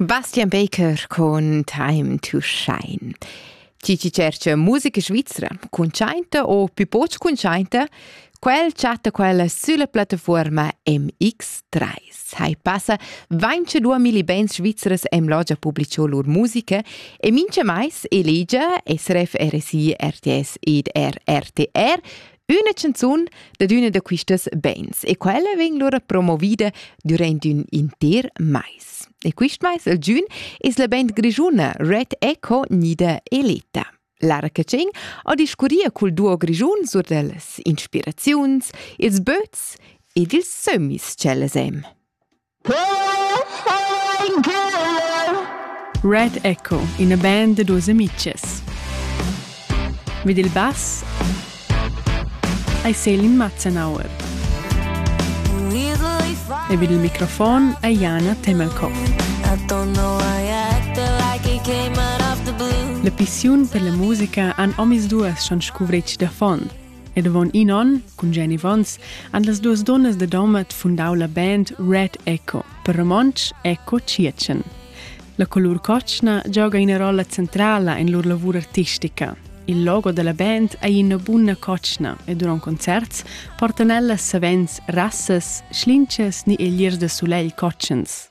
Bastian Baker con Time to Shine. Chi chi cerca musica svizra, cuntschainta o più poch cuntschainta, quel chatta quella sulla piattafuorma MX3. Hai passa 22 mili bands svizras em logia publicio lur musica e mincha mais elegia SRF RSI RTS ed RRTR Üna canzun dad üna da quistas bains e quella vegn lura promovida durant ün inter mais. E quist mais al giun es la band grischuna Red Echo Nida e Leta. Lara Catschin ha discurria cul duo grischun sur da las inspiraziuns, ils böts ed ils sömmis ch'ellas hem. Red Echo, ina band da duas amichas. Vid il bass ei Selin Matzenauer. E vid il microfon è Jana Temelkop. La pissiun per la musica han omis duas schon scuvretg da fond. Ed avon in onn, cun Jenny Vons, han las duas donnas da Domat fundau la band Red Echo, per romontsch Echo Tschiertschen. La colur cotschna gioga ina rolla centrala en lur lavur artistica. Il logo della band ei ina bunna cotschna e duront concerts portan ellas savens rassas, schlinchas ni egliers da sulegl cotschens.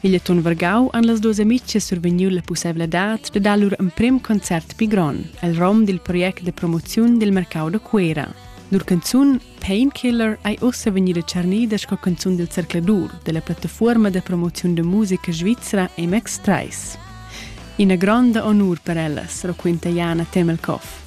Figlietun vargau han las duas amitgas survegniu la pusseivladad de dar lur emprem concert pli grond el rom dil project de promoziun dil mercau da Cuera. Lur canzun Painkiller ei ussa vegnida tschernida sco canzun dil Cercladur della plattafuorma de promoziun de musica svizra MX3. Ina gronda honur per ellas, raquinta Jana Temelkoff.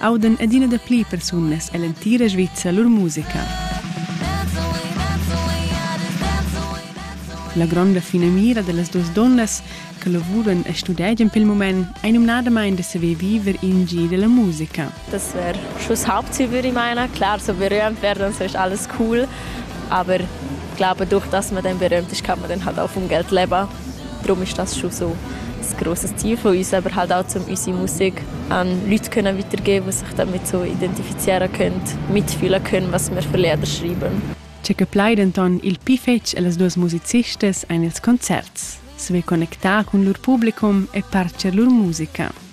audan adina dapli persunas ell'entira Svizra lur musica. La gronda finamira dellas duas donnas che lavuran e studegian pel moment è numnadamain da saver viver in gir della musica. Das wäre schon das Hauptziel, würde ich meinen. Klar, so berühmt werden und so ist alles cool, aber ich glaube, durch das man dann berühmt ist, kann man dann halt auch vom Geld leben. Drum ist das schon so ein grosses Ziel von uns, aber halt auch, um unsere Musik an Leute können weitergeben, die sich damit so identifizieren können, mitfühlen können, was wir für Lieder schreiben. Tge che plai denton il pi fetg ellas duas musicistas ein ils concerts, sve connectar cun lur publicum e parcher lur musica.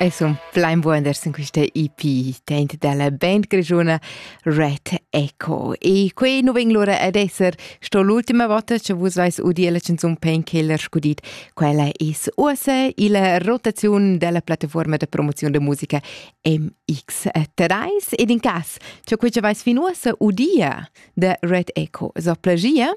Ei sun plein wonders in quista EP tent dalla band grischuna Red Echo. E quei nu vegn lura ad esser sto l'ultima vota che vus vais udir la canzun Painkiller scudit. Quella es uossa illa rotaziun della plattaforma de promozion de musica MX3 ed in cas, che quei che vais fin uossa udia de Red Echo so plagia,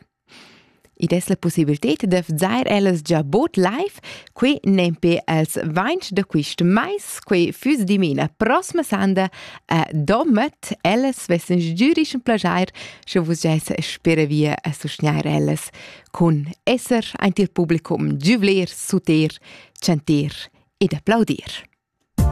Id es la pussibilted da vzar ellas già bod live, quai nempe als vainch da quist mais, quai füss dimena prossma sanda a Domat. Ellas vessans giürich ün plajair, scha vus giaissa spera via a sustgnair ellas cun esser aint il publicum, giuvler, suter, chanter ed applaudir.